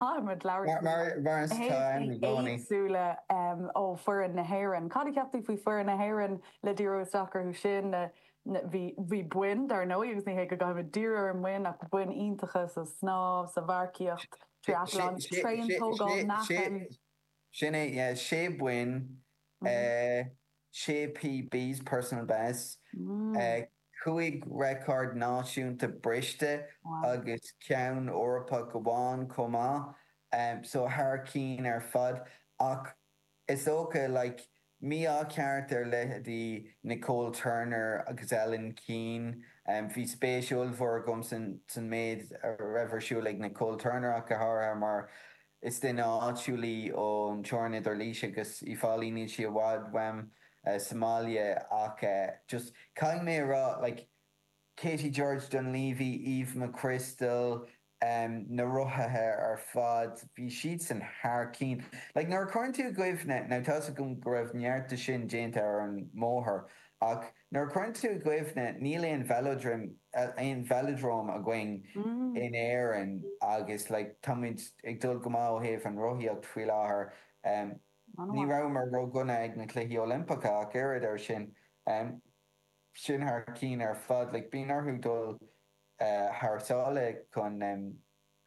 Caithfidh muid labhairt faoi mar bheireas atá ann i gcónaí. éagsúla ó fhoireann na hÉireann. Cad a cheap tú faoi foireann na hÉireann le díriú isteach orthu sin? Bhí boinn, dar ndóigh, agus ní hé go gcaithfidh muid díriú ar na boinn, ach boinn iontacha sa snámh, sa mharcaíocht, triathlon, traein, tógáil meáchain. Sin é, yeah, sé boinn. Sé PBs, personal best, 5 record náisiúnta briste agus ceann Eorpach amháin chomh maith, so thar cinn ar fad. Ach is dócha, like, mí-ádh ceart ar leithéidí Nicole Turner agus Ellen Keane. Bhí spéis ollmhór agam san méid a raibh ar siúl ag Nicole Turner ach go háirithe mar Is duine áitiúil í ón teorainn idir Laois agus Uíbh Fhailí, níl sí i bhfad uaim sa mbaile ach just caithfidh mé a rá like Katie-George Dunlevy, Eve McCrystal, na rothaithe ar fad, bhí siadsan thar cinn. Like nuair a cuireann tú i gcuimhne, now tá's agam go raibh neart de sin déanta ar an mbóthar ach, Nuair a chuireann tú i gcuimhne, níl aon velodrome, aon velodrome, againn in Éirinn agus like táimid ag dul go maith ó thaobh an rothaíocht faoi láthair. Ní rabhamar ródhona ag na Cluichí Oilimpeacha ach oiread ar sin. Sin thar cinn ar fad. Like bíonn orthu dul thar sáile chun.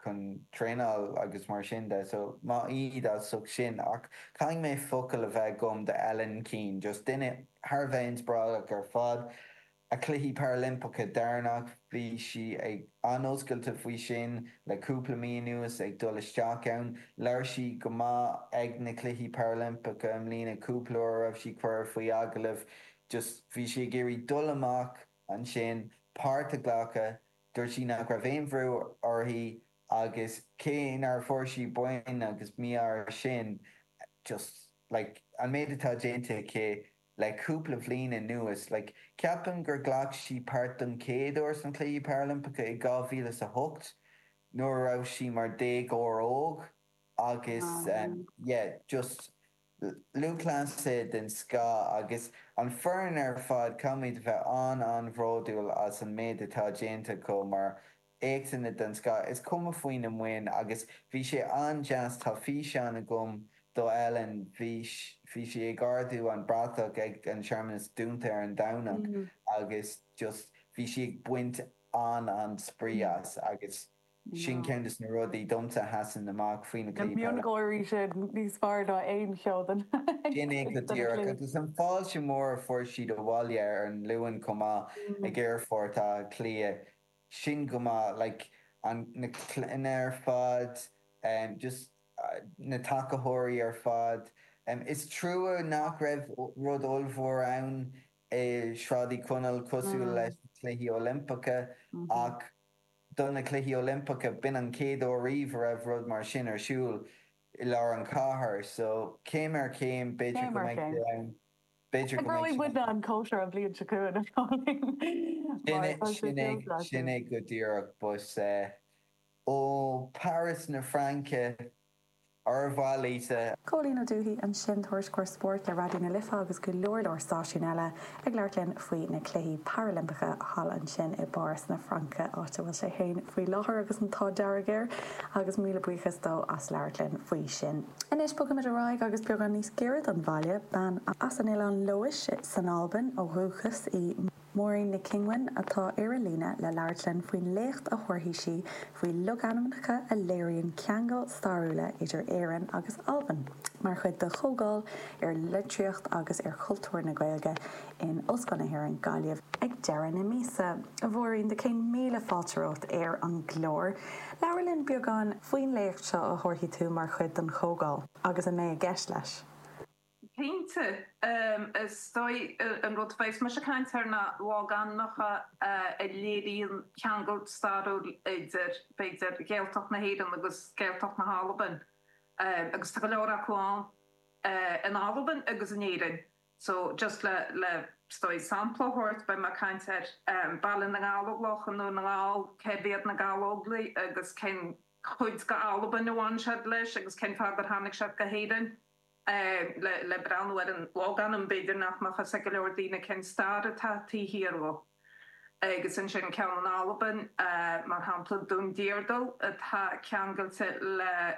chun traenáil agus mar sin de so maith iad as ucht sin ach caithfidh mé focal a bheith agam do Ellen Keane, just duine thar a bheith inspioráideach ar fad. A Cluichí Parailimpeacha deireanach, bhí sí an-oscailte faoi sin le cúpla mí anuas ag dul isteach ann. Labhair sí go maith ag na Cluichí Parailimpeacha i mbliana cúpla uair a raibh sí curtha faoi agallamh, just bhí sí ag iarraidh dul amach ansin, páirt a ghlacadh. Dúirt sí nach raibh aon bhrú uirthi agus cé nach bhfuair sí boinn agus mí-ádh ar sin, just like an méid atá déanta aici le cúpla bliain anuas, like ceapaim gur ghlac sí páirt don chéad uair sna Cluichí Parailimpeacha i dhá mhíle is a hocht nuair a raibh sí mar déagóir óg agus yeah, just. Lúthchleasaí den scoth agus an foireann ar fad, caithfimid a bheith an-an-bhródúil as an méid atá déanta acu mar éachtanna den scoth, is cuma faoi na boinn, agus bhí sé an-deas, tá físeán agam do Ellen, bhí, bhí sí ag ardú an bratach ag an searmanas dúnta ar an Domhnach agus just bhí sí ag baint an-an-spraoi as agus. Sin ceann de na rudaí domsa a sheasann amach faoi na cliatháin. Na miongháirí sin, níos fearr ná aon cheo de na cliatháin. Sin é go díreach. Agus an fháilte mhór a fuair siad abhaile ar an Luan chomh maith ag Aerfort Átha Cliath. Sin go maith. Like, an, na cleithiúna ar fad, just na tacaitheoirí ar fad. Is trua nach raibh rud ollmhór ann i Sráid Uí Chonaill cosúil leis na Cluichí Oilimpeacha ach. do na Cluichí Oilimpeacha. B'in an chéad uair riamh a raibh rud mar sin ar siúl i lár an chathair, so céim ar chéim, b'fhéidir go mbeidh sé ann, b'fhéidir go mbeidh sé ann. An cóisir an bhliain seo chugainn, a Chóilín. Sin é go díreach, but ó Paris na Fraince Ar mhaith leat a. Cóilín Ó Dufaigh ansin, tuairisceoir spóirt le Raidió na Life agus go leor leor stáisiún eile, ag labhairt linn faoi na Cluichí Parailimpeacha thall ansin i bPáras na Fraince, áit a bhfuil sé féin faoi láthair agus an t-ádh dearg air, agus míle buíochas dó as labhairt linn faoi sin. Anois, bogfaimid ar aghaidh agus beagán níos gaire don bhaile. Bean as Oileán Leódhais san Albain ó dhúchas í. Máirín Nic Cinghin, atá ar an líne le labhairt linn faoin léacht a thabharfaidh sí faoi logainmneacha a léiríonn ceangail stairiúla idir Éirinn agus Albain, mar chuid de chomhdháil ar litríocht agus ar chultúr na Gaeilge in Ollscoil na hÉireann, Gaillimh, ag deireadh na míosa. A Mháirín, tá céad míle fáilte romhat ar an gclár. Labhair linn beagán faoin léacht seo a thabharfaidh tú mar chuid den chomhdháil, agus a mbeidh i gceist leis. Cinnte, is dóigh an rud a bheas mise ag caint air ná logainmneacha a léiríonn ceangal stairiúil idir, b'fhéidir, Ghaeltacht na hÉireann agus Gaeltacht na hAlban, agus tá go leor acu ann in Albain agus in Éirinn. So, just le, le, is dóigh, sampla a thabhairt, beidh mé ag caint ar Baile na nGallóglach i nDún na nGall, cérbh iad na Gallóglaigh agus cén chuid d'Albain a bhain siad leis agus cén fáth gur tháinig siad go hÉirinn? le breathnú ar an logainm, b'fhéidir nach mbeadh fhios ag go leor daoine cén stair atá taobh thiar de. Agus ansin ceann in Albain, mar shampla, Dún Deardal, atá ceangailte le.